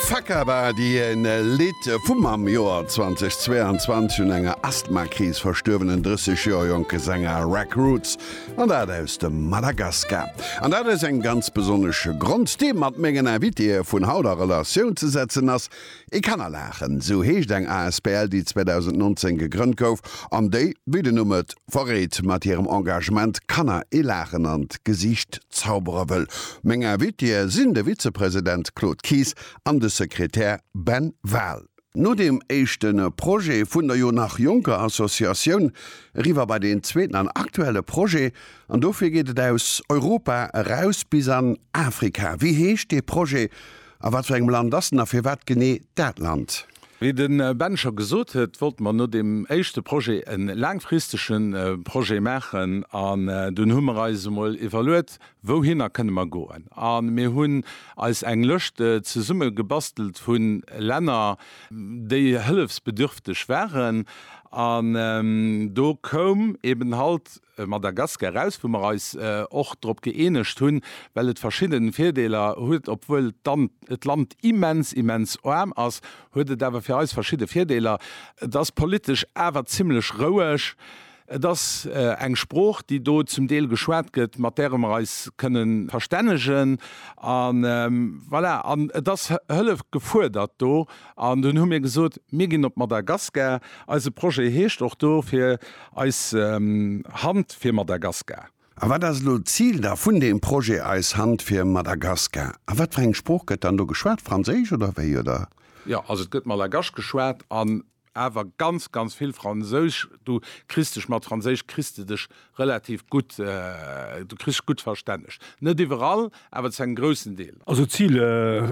Fakabadi, en Lidd vum am Joer 2022 un enger Asthmakris verstuerwenen 30 Joer jonke Sänger Raq Roots, an dat aus dem Madagaskar. An dat aus engem ganz besonnesche Grond, dee mat mengen Invitéë vun haut a Relatioun ze setzen ass, Et kann er laachen, esou heescht eng asbl, déi 2019 gegrënnt gouf an déi, wéi den Numm et verréit, mat hirem Engagement Kanner ee Laachen an d'Gesiicht zaubere wëll. Meng Invitée sinn de Vizepresident Claude Kies an de Sekretär Ben Wahl. No deem éischte Projet vun der jo nach jonker Associatioun eriwwer bei deen zweeten an aktuelle Projet. An dofir geet et aus Europa eraus bis an Afrika. Wéi heescht dee Projet? A wat fir engem Land ass en a firwat genee dat Land? Wéi de Ben scho gesot huet, wollte mer no deem éischte Projet e laangfristege Projet maachen an dunn hu mer eis emol iwwerluet, wouhinner kënne mer goen. A mir hunn eis eng Lëscht zesumme gebastelt vu Länner, déi hëllefsbedürfteg waren. An do koum eeben halt Madagaskar eraus, wou mer eis och drop gëeenegt hunn, well et verschidden Virdeeler huet, obwuel et d'Land immens, immens aarm ass, huet et awer fir eis verschidde Virdeeler, et ass politesch awer zimlech roueg, et ass eng Sprooch, déi do zum Deel geschwat gëtt, mat däre mer eis kënnen verstännegen, an voilà, an et ass Hëllef gefuerdert do, An dunn hu mir gesot, mir ginn op Madagaskar, eise Projet heescht och do fir eis Hand fir Madagaskar. A wat ass elo d'Zil da vun deem Projet eis Hand fir Madagaskar? A wat fir eng Sprooch gëtt dann do geschwat, Franséisch oder wéi, oder? Jo, also et gëtt Malagasch geschwat an awer ganz, ganz vill Fransousch. Du kriss dech mat Franséisch kriss de dech Relativ gutt, du kriss gutt verstänneg. Net iwwerall, awer zu engem groussen Deel. Also d'Zil,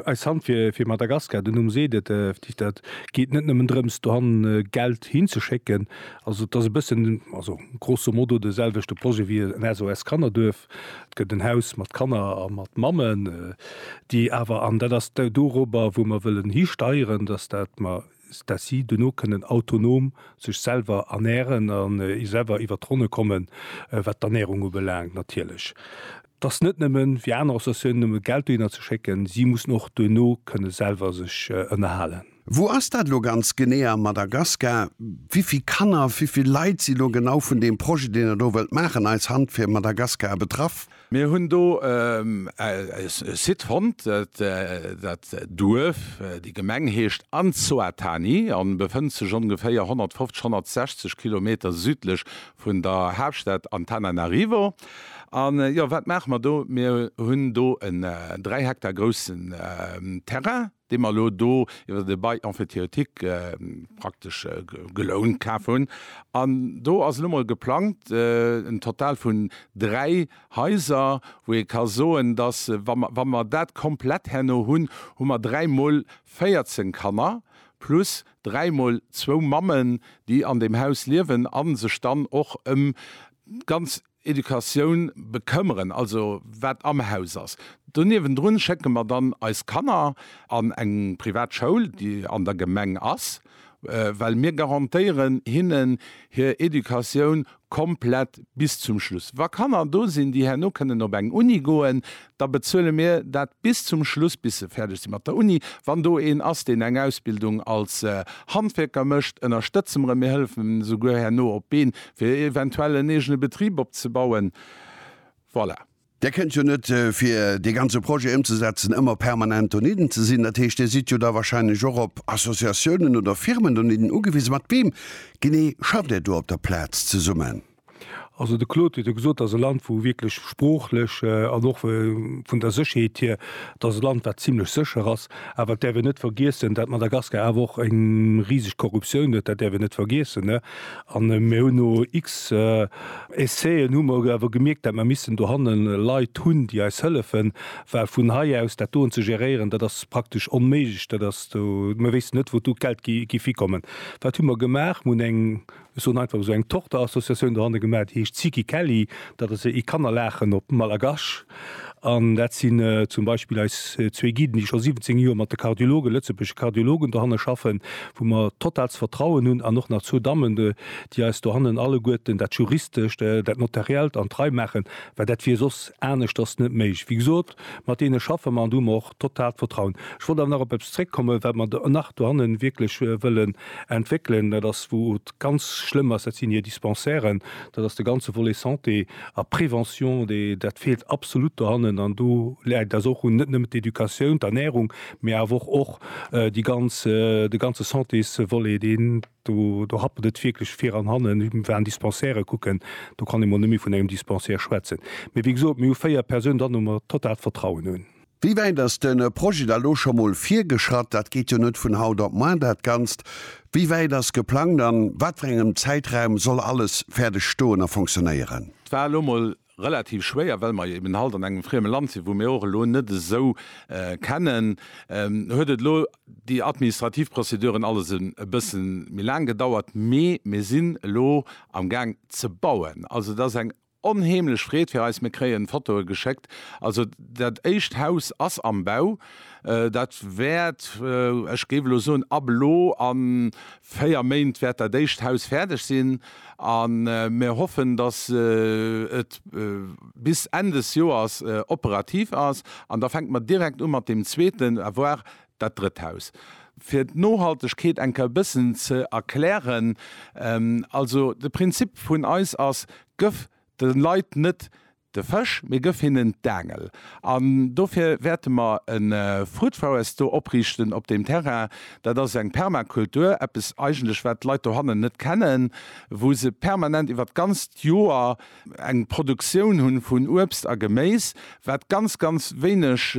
Eis Hand fir Madagaskar, de Numm seet et effektiv, dat geet net nëmmen drëms dohannen Geld hinzeschécken. Also et ass e bëssen, also grosso modo de selwechte Projet wéi en SOS Kannerduerf. Et gëtt en Haus mat Kanner a mat Mammen, déi awer, an dat ass dorobber wou mer wëllen histeieren, datt dat mer dass si dono kënnen autonom sech selwer ernären a selwer iwwert d'Ronne kommen, wat d'Ernärung ubelaangt natierlech. Et ass net nëmme wéi aner Associatiounen nëmme Geld dohinner ze schécken, si mussen och dono kënne selwer sech ënnerhalen. Wou ass dat elo ganz genee am Madagaskar? Wivill Kanner, wivill Leit si lo genau vun deem Projet, deen Der do wëllt maachen, Eis Hand fir Madagaskar, betraff? Mir hunn do e Site fonnt, dat Duerf, déi Gemeng heescht Anzouattani a befënnt sech ongeféier 150, 160 Kilometer südlech vun der Haaptstad Antananarivo. A jo, wat maache mer do? Mir hunn do en 3 Hektar groussen Terrain. dee mer elo do iwwer de Bail emphytéotique praktesch gelount kaf hunn. An do ass elo emol geplangt, en Total vun dräi Haiser, wou ee ka soen, dass, wa mer dat komplett herno hunn, hu mer dräi Mol 14 Kanner plus dräi Mol zwou Mammen, déi an deem Haus liewen a sech dann och ëm ganz, Educatioun bekëmmeren, also wat am Haus ass. Do niewendrun schécke mer dann eis Kanner an eng privat Schoul, déi an der Gemeng ass, well mir garantéieren hinnen hir Educatioun komplett bis zum Schluss. Wa Kanner do sinn, déi herno kënnen op eng Uni goen, da bezuele mir dat bis zum Schluss, bis se fäerdeg si mat der Uni. Wann do een ass, deen eng Ausbildung als Handwierker mécht, ënnerstëtze mer en, mir hëllefen en esouguer herno op d'Been, fir eventuell en eegene Betrib opzebauen. Voilà. Där kënnt jo net, fir dee ganze Projet ëmzesetzen, ëmmer permanent donidden ze sinn. Dat heescht, Dir sidd jo da wahrscheinlech och op Associatiounen oder Firmen donidden ugewisen. Mat weem genee schafft Dir do op der Plaz zesummen? Also de Claude huet jo gesot, et ass e Land, wou wierklech sproochlech an och vun der Sécherheet hier, et ass e Land, wat zimlech sécher ass. Awer et däerf een net vergiessen, datt Madagaskar awer och eng riseg Korruptioun huet, dat däerf een net vergiessen. A mir hunn no X Essai'en hu mer awer gemierkt, datt mer missten dohannen Leit hunn, déi eis hëllefen, well vun hei aus dat doen ze geréieren, dat ass praktesch onméiglech. Dat ass do, mir wéissten net, wou d'Geld géif hikommen. Wat hu mer gemaach? Mir hunn eng. Ech soen einfach esou eng Tochterassociatioun dohanne gemaach, déi heescht Siki Kelly. Dat ass ee Kannerlaachen op Malagasch. An dat sinn zum Beispill eis zwee Guiden, déi scho 17 Joer mat de Kardiologen, lëtzebuergesche Kardiologen dohanne schaffen, wou mer totaalst Vertrauen hunn. An och nach zwou Dammen, déi eis dohannen alleguerten dat Juristescht, dat Notariellt an d'Rei maachen, well dat wier soss aneschters net méiglech. Wéi gesot, Mat deene schaffe mer an do hu mer och totalt Vertrauen. Ech wollt awer nach op eppes zréckkommen, wat mer nach dohannen wierklech wëllen entwéckelen. Dat ass, wou et ganz schlëmm ass, dat sinn hir Dispensairen. Dat ass de ganze Volet Santé a Prévention, dee, dat feelt absolut dohannen. An do läit et eis och un, net nëmmen d'Educatioun, d'Ernährung, mee awer och, och déi ganz, de ganze Santésvolet, deen, Do happelt et wierklech vir an hannen. Ech war an Dispensairen kucken, do kann ee mol net méi vun engem Dispensaire schwätzen. Mee wéi gesot, mir hu véier Persounen dran, wou mer totalt Vertrauen hunn. Wéi wäit ass de Projet da lo scho mol virgeschratt? Dat geet jo net vun haut op moar, dat Ganzt. Wéi wäit ass geplangt, a wat fir engem Zäitraum soll alles fäerdeg stoen a fonctionnéieren? Et war elo mol relativ schwéier, well mer eben halt an engem frieme Land sinn, wou mir och elo net esou kennen. Huet et elo déi administrativ Prozeduren alles e bësse méi laang gedauert, mee mir sinn elo am Gaang ze bauen. Also et ass eng onheemlech Freed fir eis, mir kréien Fotoe geschéckt. Also dat éischt Haus ass am Bau. Dat wäert, ech géif elo soen, ab elo a véier Méint wäert dat éischt Haus fäerdeg sinn. A mir hoffen, datt et bis Enn des Joers operativ ass. An da fänke mer direkt u mat deem zweeten, voire dat drëtt Haus. Fir d'Nohaltegkeet eng Kéier e bëssen ze erklären, Also de Prinzip vun eis ass, Gëff de Leit net De Fësch, mir gëff hinnen d'Aangel. An dofir wäerte mer e Fruit Forest do opriichten op deem Terrain. Dat ass eng Permakultur, eppes eigentlech wat d'Leit dohannen net kennen, wou se permanent iwwert d'ganzt Joer eng Produktioun hu vun Uebst a Geméis, wat ganz, ganz wéineg.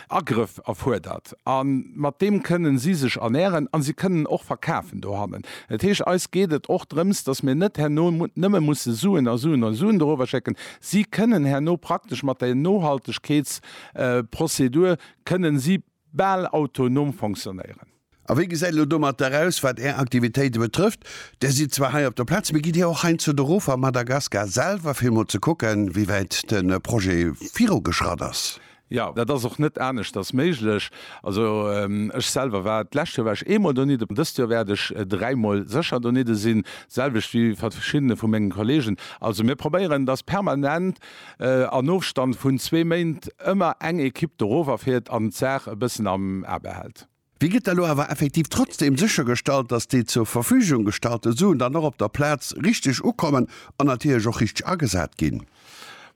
Agrëff erfuerdert an mat deem kënnen si sech ernähren an si kënnen och verkafen dohannen. Dat heescht, eis geet et och drëms, dass mir net herno nëmme musse Suen a Suen a Suen dorower schécken. Si kënnen herno praktesch mat der Nohaltegkeetsprozedur kënnen si bal autonom fonctionnéieren. A wéi gesäit et elo domatter aus, wat Är Aktivitéite betrëfft? Där sidd zwar hei op der Plaz, mee gitt Dir och heiandsdo erof a Madagaskar selwer, fir emol ze kucken, wéi wäit de Projet virugeschratt ass? Jo, dat ass och net aneschters méiglech. Also ech selwer war, d'lescht Joer war ech eemol donidden, dëst Joer wäert ech dräimol sécher donidde sinn, d'selwecht wéi verschiddene vu menge Kolleegen. Also mir probéieren, dass permanent an Ofstand vun zwee Méint ëmmer eng Ekipp do eroverfiert an d'Saach e bëssen am A behält. Wéi gëtt da lo awer effektiv trotzdem séchergestallt, dass déi zur Verfügung gestallte Suen dann och op der Plaz richteg ukommen an natierlech och richteg agesat ginn?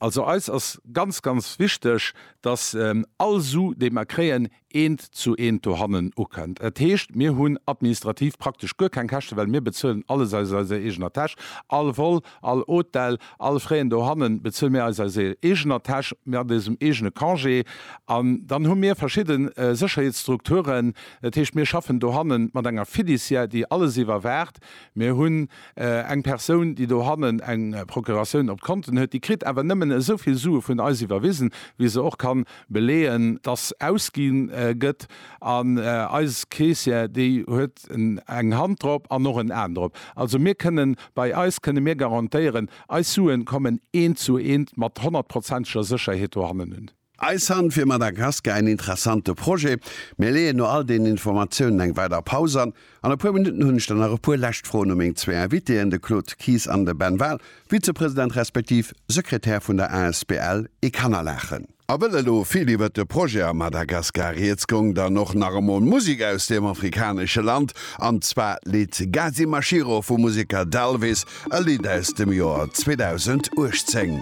Also eis ass ganz, ganz wichteg, dass all Su, déi mer kréien, eent zu eent dohannen ukënnt. Dat heescht, mir hunn administrativ praktesch guer keng Käschte well mir bezuelen alles aus eiser eegener Täsch, all Vol, All Hotel, all Fréien dohannen bezuele mir eis aus eegener Täsch, mat eisem eegene Congé. An dann hu mir verschidde Sécherheetsstrukturen, dat heescht mir schaffen dohannen mat enger Fiduciaire, déi alles iwwerwaacht. Mir hunn eng Persoun, déi dohannen eng Procuratioun op d'Konten huet. Déi kritt awer nëmmen esou vill Sue vun eis iwwerwisen, wéi se och kann beleeën, dass ausginn gëtt. An eis Caissière, déi huet eng Hand drop an och en Aen drop. Also mir kënnen, bei eis kënne mir garantéieren, eis Suen kommen eent zu eent mat honnertprozenteger Sécherheet dohannen un. Eis Hand fir Madagaskar, en interessante Projet. Mir leeën no all deenen Informatiounen eng weider Paus an. An e puer Minutten hunn ech dann nach e puer lescht Froen u meng zwee Invitéen, de Claude Kies an de Ben Wahl, Vizepresident respektiv Sekretär vun der asbl Ekannerlachen. A wëll elo vill iwwert de Projet a Madagaskar rieds gong, dann och nach emol Musek aus deem afrikanesche Land, an zwar leet Gazi Mashiro vu Musika Dalvis e Lidd aus dem Joer 2018.